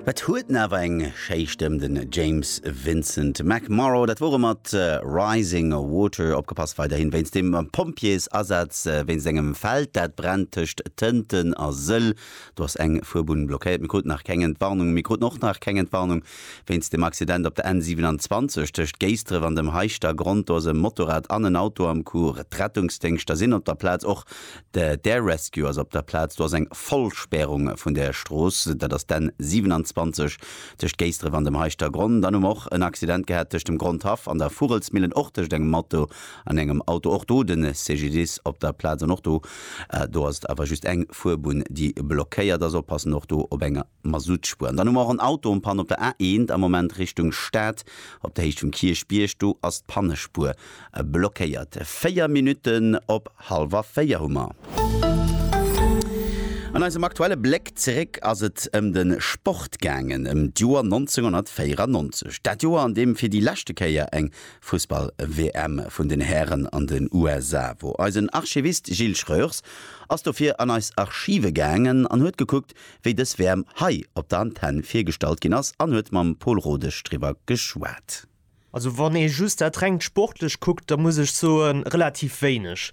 Et huet en awer eng schéi Stëmm, den James Vincent McMorrow. Dat wor e mat Rising Water. Opgepasst weiderhin wéinst dem Pompjeesasaz wéinst engem Feld, dat brennt tëscht Tënten a Sëll. Do ass eng Fuerbunn blockéiert. Mir kruten nach keng Entwarnung. Mir kruten och nach keng Entwarnung wéinst dem Accident op der N 27 tëscht Géisdref an dem Heischtergronn. Do ass e Motorrad an en Auto am Coup. D'Rettungsdéngschter sinn op der Plaz. Och De d'Air Rescue ass op der Plaz. Do ass eng Vollspärung vun der Strooss, dat ass d'N 27 tëscht Géisdref an dem Heischtergronn. Dann hu mer och en Accident gehat tëscht dem Grondhaff an der Vugelsmillen, och tëscht engem Matto an engem Auto. Och do de CGDIS op der Plaz an och do do ass et awer just eng Fuerbunn, déi blockéiert ass. Oppassen och do op enger. Masuttspuer. An dann hu mer och en Auto en panne op der A1 am Moment Richtung Stad, op der Héicht vum Kierchbierg, do ass d'Pannespuer blockéiert. Véier Minutten op hallwer véier hu mer. An eisem aktuelle Bléck zeréck ass et ëm de Sport gaangen, ëm d'Joer 1994. Dat Joer, an deem fir déi leschte Kéier eng Fussball-WM vun den Hären an den USA wor. Eisen Archivist Gilles Schreurs ass dofir an eis Archive gaangen an huet gekuckt, wéi dës Wäerm hei op der Antenn virgestallt ginn ass an huet mam Pol Rodesch driwwer geschwat. Also wann ee just dat rengt Sportlecht kuckt, da muss ech soen, relativ wéineg.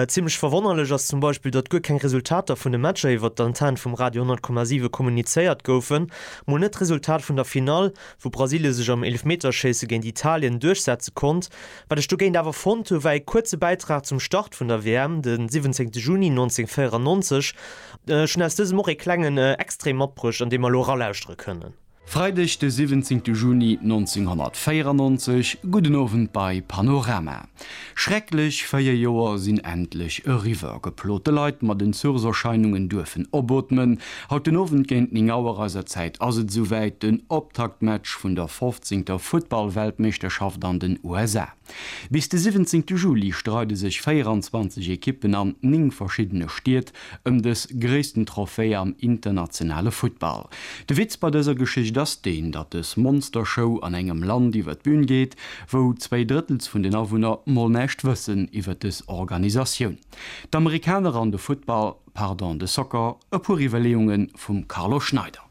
Zimmlech verwonnerlech ass zum Beispill, datt guer keng Resultater vun de Matcher iwwert d'Antenn vum Radio 100,7 kommunizéiert goufen. Mol net d'Resultat vun der Finall, wou Brasilien sech am Eelefmeterschéisse géint Italien duerchsetze konnt. Wat ech dogéint awer fonnt hu war ee kuerze Bäitrag zum Start vun der WM, de 17. Juni 1994, Ech hunn aus dësem och ee klengen Extrait matbruecht, an dee mer elo eralauschtere kënnen. Freideg de 17 Juni 1994, gudden Owend bei Panorama. Schrecklech 4 Joer sinn endlech eriwwer. Geplote Leit mat Entzugserscheinungen duerfen opootmen. Haut den Owend géint 9 Auer eiser Zäit ass et esouwäit, den Optaktmatch vun der 15. Futtball-Weltmeeschterschaft an den USA. Bis de 17 Juli streide sech 24 Ekippen an 9 verschiddene Stied ëm dës gréissten Trophée am internationale Futtball. De Witz bei dëser Geschicht ass deen, datt dës Monstershow an engem Land iwwer d'Bühn geet, wou zwéi Drëttels vun den Awunner mol näischt wëssen iwwer dës Organisatioun. D'Amerikaner an de Futtball, pardon, de Soccer, e puer Iwwerleeunge vum Carlo Schneider.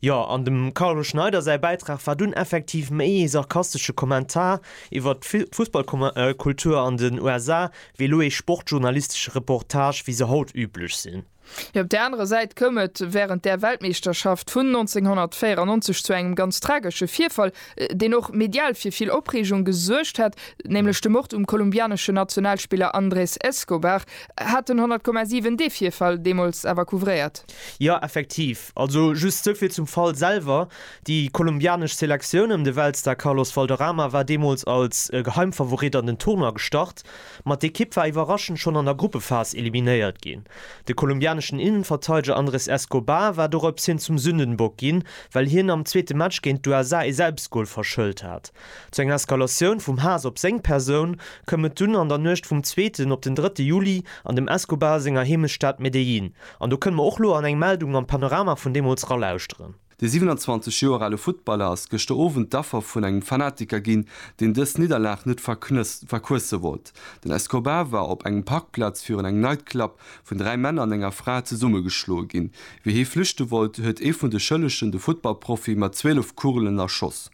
Jo, an dem Carlo Schneider säi Bäitrag war dunn effektiv méi ee sarkastesche Kommentar iwwert d'Fussballkultur an den USA, wéi elo ee sportjournalistesche Reportage, wéi se haut üblech sinn. Op där anerer Säit koum et wärend där Weltmeeschterschaft vun 1994 zu engem ganz tragesche Virfall, deen och medial fir vill Opreegung gesuergt hat, nämlech de Mord um kolumbianeschen Nationalspiller Andrés Escobar. Hat den 100,7 dee Virfall deemools awer couvréiert? Jo effektiv. Also just souvill zum Fall selwer, déi kolumbianesch Selektioun ëm de Weltstar Carlos Valderrama war deemools als Geheimfavorit an den Tournoi gestart, ma d'Ekipp war iwwerraschend schonn an der Gruppephas eliminéiert ginn. De kolumbianeschen Innenverteideger Andres Escobar war dorops hin zum Sündenbock ginn, well hien am zweete Match géint d'USA ee Selbstgol verschëlt hat. Zu enger Eskalatioun vum Haass op seng Persoun koum et dunn an der Nuecht vum zweeten op den drëtte Juli an dem Escobar senger Heemechtsstad Medellín, An do kënne mer och lo an eng Meldung am Panorama vun deemools ralauschteren. De 27 Joer ale Futtballer ass gëschter Owend d'Affer vun engem Fanatiker ginn, deen dës Nidderlag net verquësse wollt. Den Escobar war op engem Parkplaz virun engem Nightclub vun dräi Männer an enger Fra zesummegeschloe ginn. Wéi hie flüchte wollt, huet ee vun de Schëllegen de Futtballprofi mat 12 Kugelen erschoss.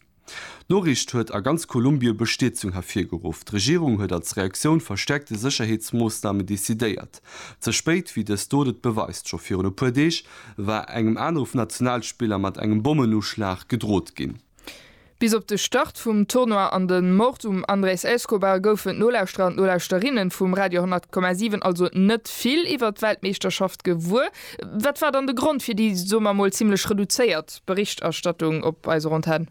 D'Noriicht huet a ganz Kolumbie Bestierzung hervirgeruff. D'Regierung huet als Reaktioun verstäerkte Sécherheetsmoossnamen decidéiert. Ze spéit, wéi dës Dot et beweist. Scho virun e puer Deeg war engem anere Nationalspiller mat engem Bommenuschlag gedrot ginn. Bis op de Start vum Tournoi an de Mord um Andrés Escobar goufen d'Nolauschterer an d'Nolauschterinnen vum Radio 100,7 also net vill iwwert d'Weltmeeschterschaft gewuer. Wat war dann de Grond fir déi, soe mer mol, zimlech reduzéiert Berichterstattung op eiser Antenn.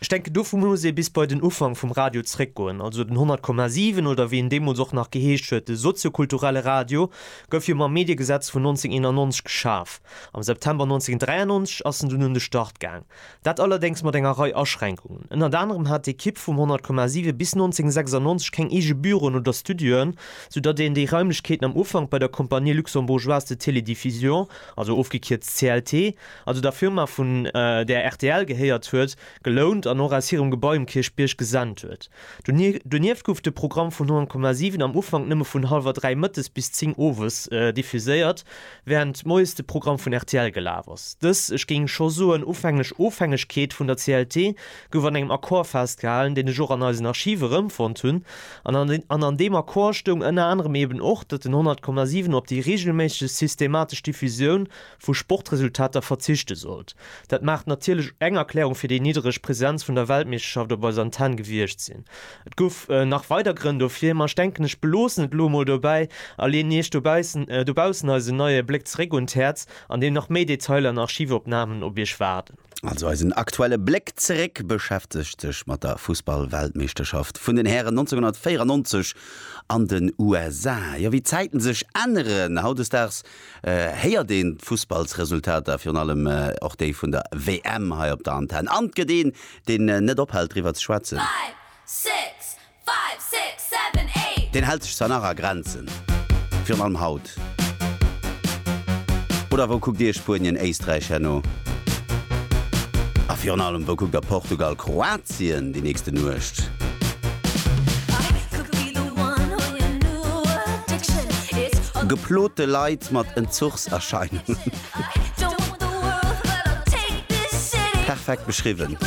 Ech denken dovu muss ee bis bei den Ufank vum Radio zréckgoen, also den 100,7 oder wéi en deemools och nach geheescht huet, de soziokulturelle Radio gouf jo mam Mediegesetz vun 1991 geschaf. Am September 1993 ass en dunn un de Start gaang, dat allerdéngs mat enger Rei Aschränkungen. Ënnert anerem hat d'Ekipp vum 100,7 bis 1996 keng eege Büroen oder Studioen, sou datt een déi Raimlechkeeten am Ufank bei der Compagnie Luxembourgeoise de Télédiffusion, also ofgekierzt CLT, also der Firma vun där rtl gehéiert huet, gelount an och aus hirem Gebai um Kierchbierg gesent huet. Donieft gouf de Programm vun 100,7 am Ufank nëmme vun hallwer dräi mëttes bis zéng owes diffuséiert, wärend moies de Programm vun rtl gelaf ass. Dës, ech géing scho soen, ufänglech Ofhängegkeet vun der CLT gouf an engem Accord festgehalen, deen ech och an eisen Archive erëmfonnt hunn, an an deem Accord stoung ënner anerem eben och, datt den 100,7 op déi reegelméisseg systematesch Diffusioun vu Sportresultater verzichte sollt. Dat mag natierlech eng Erklärung fir déi niddereg Presenz vun der Weltmeeschterschaft op eiser Antenn gewiescht sinn. Et gouf nach weider Grënn dofir, ma ech denken ech beloossen et elo mol dobäi a leeën Iech dobaussen eisen neie Bléck zeréck un d'Häerz, an deem nach méi Detailer an Archivopnamen op Iech waarden. Also eisen aktuelle Bléck zeréck beschäftegt sech mat der Fussball-Weltmeeschterschaft vun den Hären 1994 an den USA. Jo, wéi d'Zäiten sech änneren, hautdesdaags héiert een d'Fussballsresultater, virun allem och déi vun der WM hei op der Antenn, an 't gëtt een, deen net ophält driwwer ze schwätzen. Deen hält sech zwar nach a Grenzen, virun allem haut. Oder wou kuckt Dir Spuenien, Éisträich herno? A virun allem, wou kuckt Der Portugal, Kroatien? Bett zéien déi nächste Nuecht. Geplote Leit mat Entzuchserscheinungen. Perfekt beschriwwen.